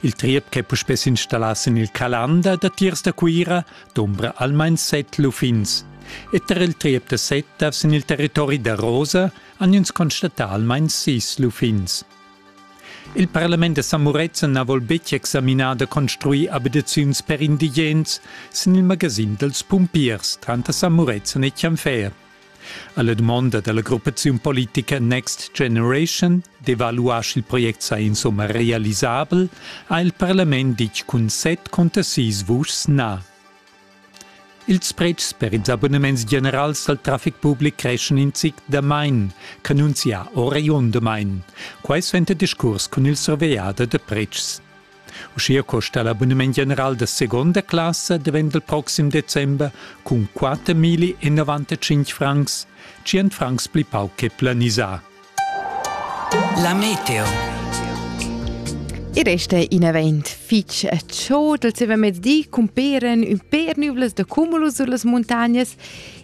Il triep ch'è puspè s'installà sin il Calanda datiers da Cuira dumbra almain set luffins. E tar il triep da Setta sin il territori da Rosa han ins constatà almain sis luffins. Il parlament da San Murezzan na vol betg examinar da construir abitaziuns per indigens sin il magasin dals pumpiers tranter San Murezzan e Chianfer. Alla dumonda dalla gruppaziun politica Next Generation d'evaluar sch'il project sa insomma realisabel ha il parlament ditg cun set conter sis vuschs na. Ils pretschs per ils abonnements generals dal traffic public creschen in zic damain, cannunzia Orion damain. Quai suenter discurs cun il survegliader da pretschs. Uschia costa l'abunament general da seconda classa davent dal proxim december cun 4.095 francs, 100 francs pli pauc che planisà. La meteo. I resta in event fitg ciò dal mezdi cumperen un per nüvlas da cumulus sulle montagne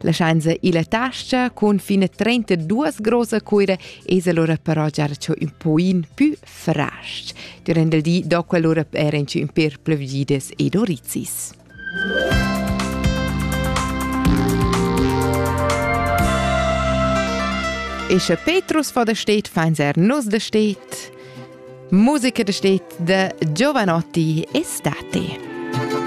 Laschain se illa tascha cun fine 32 grosa cuira es allora però già ciò un poin più frasch. Durant il di dopo allora eran ci un per plevgides ed orizzis. E sche Petrus vor der steht, fein er nus der steht. Musica der steht, de Giovanotti estate.